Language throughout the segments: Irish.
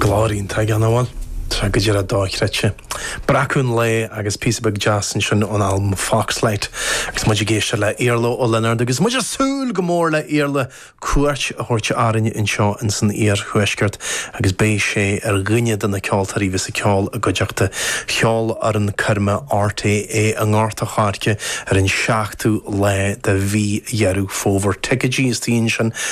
Glór iontach aige, an mhuil, tá, go díreach dochreidte. Breacadh an lae agus píosa beag deas ansin ón albam Foxlight agus muid ag éisteacht le Iarla Ó Lionáird agus muid ag súil go mór le Iarla cuairt a thabhairt orainn anseo ins an Iar Thuaisceart agus beidh sé ar dhuine de na ceoltóirí bheas ag ceol i gcuideachta Cheolfhoireann coirme RTÉ i nGort a' Choirce ar an 7ú lá de mhí Dheireadh Fómhair. Ticéidí istigh ansin.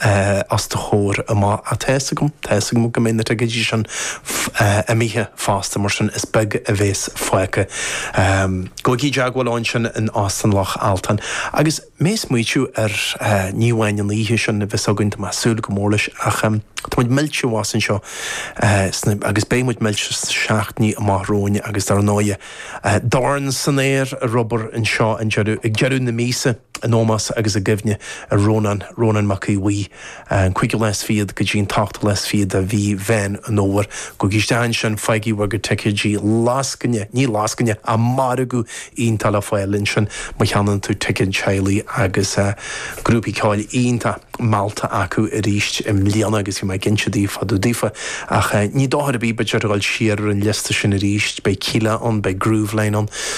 Eh, os do chomhair amach, tá fhios agam, tá fhios agam go mbeidh na ticéidí sin imithe fosta, mar sin is beag a bheas fágtha. Ehm, gabhaigí i dteagmháil ansin in Óstán Loch Altan. Agus mé ag smaoitiú ar, eh, ní amháin an oíche sin a bheas againn, tá mé ag súil go mór leis, ach, em, tá muid millte abhus anseo, eh, sna, agus beidh muid millte sna seachtainí amach romhainn agus dar ndóighe, eh, Dorn san Aer ar obair anseo an deireadh, ag deireadh na míosa. In ómós agus i gcuimhne ar Rónán, Rónán Mac Aodh Bhuí, an cúigiú lá is fichead go dtí an t-ochtú lá is fichead de mhí Mheán an Fhómhair. Gabhaigí isteach ansin, faighigí bhur gcuid ticéidí lascaine, ní lascaine, ach margadh iontach le fáil ansin má cheannann tú ticéad teaghlaigh agus grúpaí ceoil iontach meallta acu arís i mbliana agus bhí mé ag caint daofa, daofa ach ní dochar ar bith, b'fheidir, a dhul siar ar an liosta sin arís. Beidh Kíla ann, beidh Grooveline ann.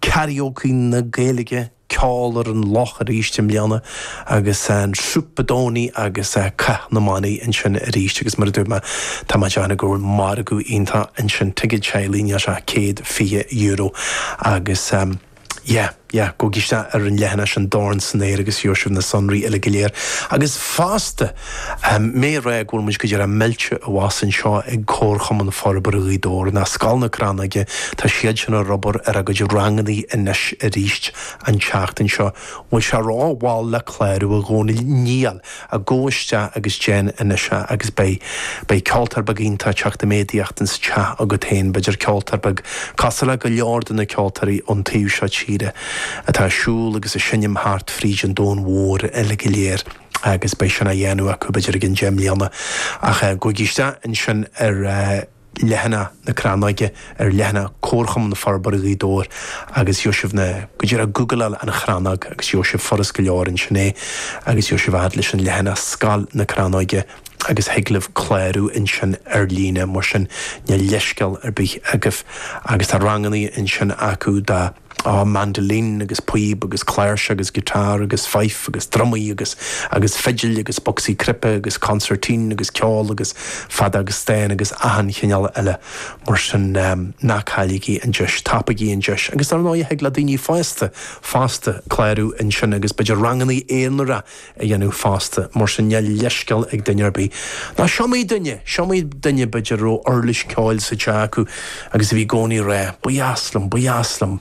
Karaoke na Gaeilge, Ceol ar an loch arís i mbliana agus Supadónaí agus Cath na mBannaí ansin arís agus mar a dúirt mé tá mé ag déanamh go bhfuil margadh iontach ansin, ticéad teaghlaigh níl sé ach €120 agus yeah, yeah gabhaigí isteach ar an leathanach sin, an Dorn san Aer agus gheobhaidh sibh na sonraí uilig go léir agus fosta. Mé ag rá go bhfuil muid go léir millte abhus anseo ag Comharchumann Forbartha Ghaoth Dobhair, ná Scoil na Crannóige, tá siadsean ar obair ar a gcuid rangannaí anois aríst an tseachtain seo. Bhfuil sé ró-mhall le clárú, a Dhomhnaill? Níl! gabh isteach agus déan anois é, agus beidh, beidh ceoltóir beag iontach ag teacht i méadaíocht ins an teach agat féin, b'fhéidir ceoltóir beag cosúil le go leor de na ceoltóirí ón taobh seo tíre atá ag siúl agus ag seinm thart fríd an domhan mhór uilig go léir. agus beidh sin á dhéanamh acu b'fhéidir i gceann deich mbliana, ach gabhaigí isteach ansin ar leathanach na Crannóige, ar leathanach Comharchumann Forbartha Ghaoth Dobhair agus gheobhaidh sibh na, go díreach gúgláil An Chrannóg agus gheobhaidh sibh furast go leor ansin é agus gheobhaidh sibh a fhad leis an leathanach Scoil na Crannóige agus thig libh clárú ansin ar líne, mar sin níl leithscéal ar bith agaibh. Agus tá rangannaí ansin acu dá. á mandolin agus píob agus cláirseach agus guitar agus fife agus drumaí agus agus fidil agus bocsaí cnaipe agus concertina agus ceol agus feadóg stáin agus achan chineál eile mar sin ná cailligí an deis, tapaigí an deis agus dar ndóigh thig le daoine fásta fosta clárú ansin agus b'fhéidir rangannaí aonaracha a dhéanamh fosta, mar sin níl leithscéal ag duine ar bith. Ná is iomaí duine, is iomaí duine b'fhéidir a raibh uirlis ceoil sa teach acu agus a bhí i gcónaí ag rá, ba dheas liom, ba dheas liom,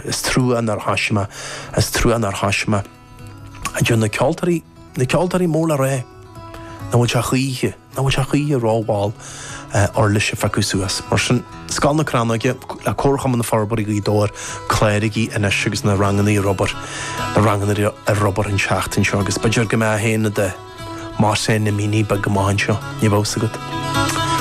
is trua nár thoisigh mé, is trua nár thoisigh mé. A deir na ceoltóirí, na ceoltóirí mór le rá, nach bhfuil sé choíche? Nach bhfuil sé choíche rómhall uirlis a phiocadh suas, mar sin, Scoil na Crannóige, le Comharchumann Forbartha Ghaoth Dobhair, cláraigí anois agus na ranganna ar obair, na ranganna ar obair an tseachtain seo agus b'fhéidir go mbeidh tú féin i do Mohsen Amini beag go maith ansin, ní bheadh fhios agat.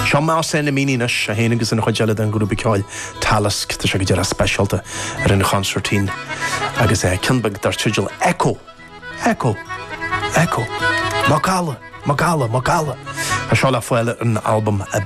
Seo Mohsen Amini anois, é féin agus an chuid eile den ghrúpa ceoil Talisk, tá sé go dearfa speisialta ar an chonsairtín agus ceann beag dar teideal Echo! Echo, echo, macalla, macalla, macalla. Tá seo le fáil ar an albam Ab.